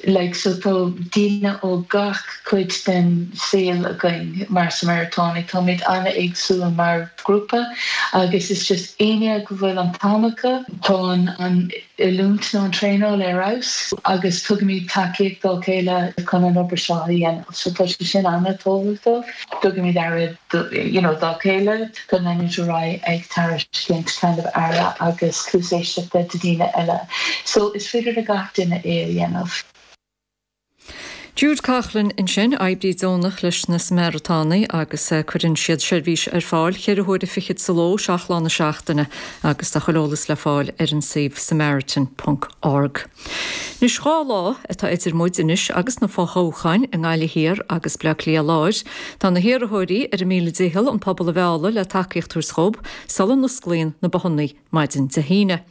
Like so tá daoine ó gach cuid den saol againn mar Shamaratánaigh. Táimid an-éagsúil mar ghrúpa agus is just éinne go bhfuil an t-am acu. Tá an oiliúint nó an traenáil ar fheabhas agus tugaimid tacaíocht dá chéile chun an obair seo a dhéanamh so tá sé sin an-tábhachtach. Tugaimid aire dá chéile. chun leanúint ar aghaidh ag tairiscint kind of aire agus cluas éisteachta do dhaoine eile. So is féidir le gach duine é a dhéanamh. Jude Coughlan ansin, oibrí deonach leis na Samaratánaigh agus cuireann siad seirbhís ar fáil ceithre huaire fichead sa ló seacht lá na seachtaine agus tá chuile eolas le fáil ar an suíomh samaritans.org. Anois dhá lá atá idir muid anois agus na fothoghcháin i nGaillimh Thiar agus Bleá Cliath Láir. Tá na hiarrthóirí ar a míle dicheall an pobal a mhealladh le tacaíocht a thabhairt dhób sula n-osclaíonn na bothanna maidin Dé hAoine.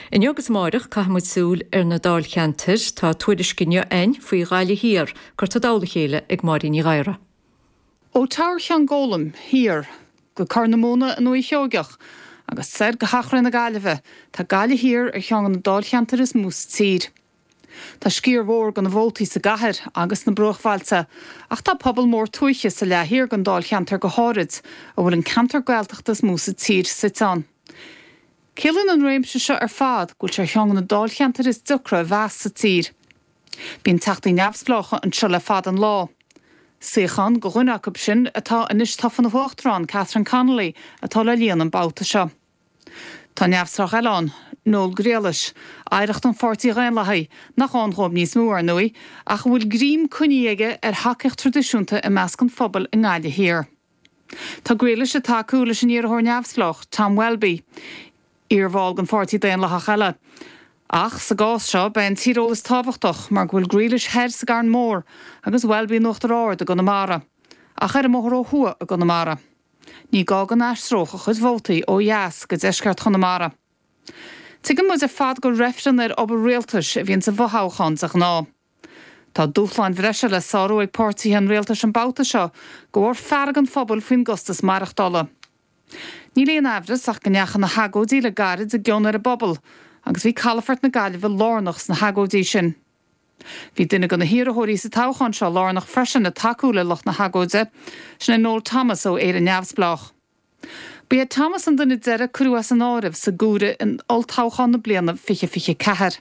Inniu agus amáireach caithfidh muid súil ar na dáilcheantair. Tá tuairisc inniu a'ainn faoi Ghaillimh Thiar curtha i dtoll a chéile ag Máirín Ní Ghadhra. Ó Ghaillimh go Ceann Gólaim thiar go Corr na Móna i nDúiche Sheoigeach, agus soir go hEachréidh na Gaillimhe, tá Gaillimh Thiar ar cheann de na dáilcheantair is mó sa tír. Tá sciar mhór de na vótaí sa gcathair agus sna bruachbhailte, ach tá pobal mór tuaithe sa leath thiar den dáilcheantar go háirid, a bhfuil an ceantar Gaeltachta is mó sa tír suite ann. Ciallaíonn an réimse seo ar fad go bhfuil sé ar cheann de na dáilcheantair is deacra a mheas sa tír. Bíonn teachtaí neamhspleácha anseo le fada an lá. Suíochán do dhuine acu sin atá anois tofa ina hUachtarán, Catherine Connolly, atá le líonadh an babhta seo. Tá neamhspleách eile ann, Noel Grealish, oidhreacht an Pháirtí Dhaonlathaigh, nach ann dhóibh níos mó, ar ndóigh, ach a bhfuil greim coinní aige ar thacaíocht traidisiúnta i measc an phobail i nGaillimh Thiar. Tá Grealish ag tacú leis an iarrthóir neamhspleách, Tom Welby, iarbhall den Pháirtí Daonlathach eile. Ach sa gcás seo, beidh an tíreolas tábhachtach mar go bhfuil Grealish thoir sa gCarn Mór agus Welby in Uachtar Ard i gConamara, ach ar an mbóthar ó thuaidh i gConamara. Ní gá go n-aistreodh a chuid vótaí ó dheas go deisceart Chonamara. Tuigeann muid ar fad gur reifreann ar obair rialtais a bhíonn sa bhfothoghchán de ghnáth. Tá dúshláin bhreise le sárú ag páirtithe an rialtais an babhta seo de bharr fearg an phobail faoin gcostas maireachtála. Níl aon aimhreas ach go ndeachaigh na hagóidí le gairid i gcion ar an bpobal agus bhí calafort na Gaillimhe lárnach sna hagóidí sin. Bhí duine de na hiarrthóirí sa toghchán seo lárnach freisin ag tacú le lucht na hagóide, sin é Noel Thomas ó Éire Neamhspleách. Ba é Thomas an duine deiridh a cuireadh as an áireamh sa gcomhaireamh in olltoghchán na bliana 2024.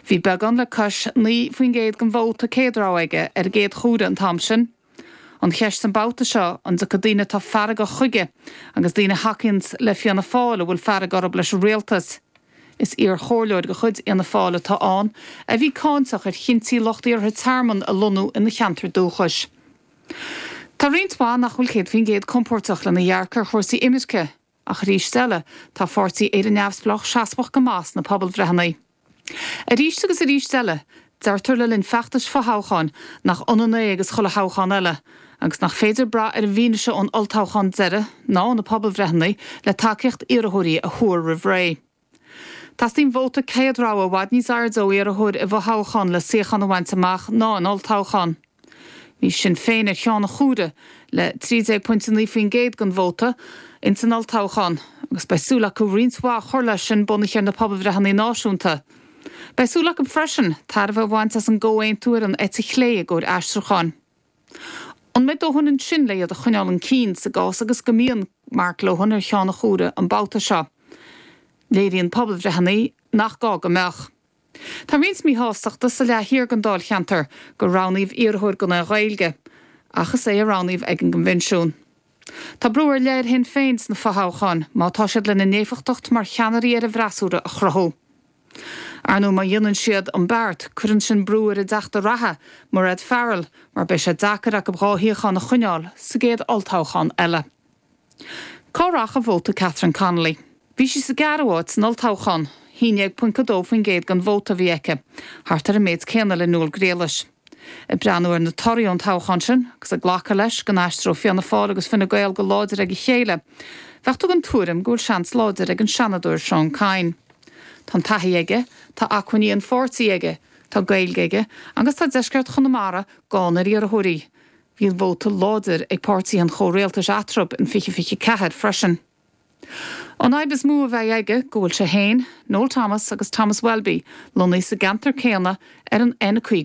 Bhí beagán le cois 9 faoin gcéad den vóta céad rogha aige ar an gcéad chomhaireamh an t-am sin. An cheist an babhta seo, an dtiocfaidh daoine atá feargach chuige, agus daoine a thacaíonn le Fianna Fáil a bhfuil fearg orthu leis an rialtas? Is iarchomhairleoir de chuid Fhianna Fáil atá ann a bhí cáinteach ar chinntí lucht iarrtha tearmann a lonnú ina cheantar dúchais. Tá roinnt mhaith nach bhfuil céad faoin gcéad compóirteach lena dhearcadh ar chúrsaí imirce, ach arís eile, tá a pháirtí Éire Neamhspleách seasmhach go maith sna pobalbhreitheanna. Arís agus arís eile, deirtear le linn feachtais fothoghcháin nach ionann é agus chuile thoghchán eile, agus nach féidir brath ar an bhfianaise ón olltoghchán deiridh, ná ó na pobalbhreitheanna, le tacaíocht iarrthóirí a thuar roimh ré. Teastaíonn vóta céad rogha i bhfad níos airde ó iarrthóir i bhfothoghchán le suíochán a bhaint amach ná in olltoghchán. Bhí Sinn Féin ar cheann an chomhairimh le 13.9% den vóta in san olltoghchán agus beidh súil acu roinnt mhaith a chur leis sin bunaithe ar na pobalbhreitheanna náisiúnta. Beidh súil acu freisin tairbhe a bhaint as an gComhaontú ar an eite chlé i gcomhair aistriúcháin. An mbeidh dóthain ansin le iad a choinneáil chun cinn sa gcás agus go mbíonn Mark Lohan ar cheann an chomhairimh an babhta seo? Léiríonn pobalbhreitheanna nach gá go mbeadh. Tá roinnt míshástachta sa leath thiar den dáilcheantar gur roghnaíodh iarrthóir gan an Ghaeilge ach is é a roghnaíodh ag an gcoinbhinsiún. Tá brú ar leith ar Shinn Féin sna fothoghcháin má tá siad lena n-éifeachtacht mar cheannairí ar an bhfreasúra a chruthú. Ar ndóigh, má dhéanann siad an beart, cuireann sin brú ar a dteachta reatha, Mairéad Farrell, mar beidh sé deacair acu dhá shuíochán a choinneáil sa gcéad olltoghchán eile. Cá rachaidh vóta Catherine Connolly? Bhí sí sa gceathrú háit san olltoghchán. 11.2% den vóta a bhí aici, thart ar an méid céanna le Noel Grealish. Ag breathnú ar na torthaí ón toghchán sin, agus ag glacadh leis go n-aistreoidh Fianna Fáil agus Fine Gael go láidir ag a chéile, bheadh tú den tuairim go bhfuil seans láidir ag an Seanadóir Seán Kyne. Tá an taithí aige, tá acmhainní an pháirtí aige, tá Gaeilge aige agus tá deisceart Chonamara gann ar iarrthóirí. Bhí an vóta láidir ag páirtithe an chomhrialtais eatarthu in 2024 freisin. An fhadhb is mó a bheidh aige go bhfuil sé féin, Noel Thomas agus Thomas Welby lonnaithe sa gceantar céanna ar an N50.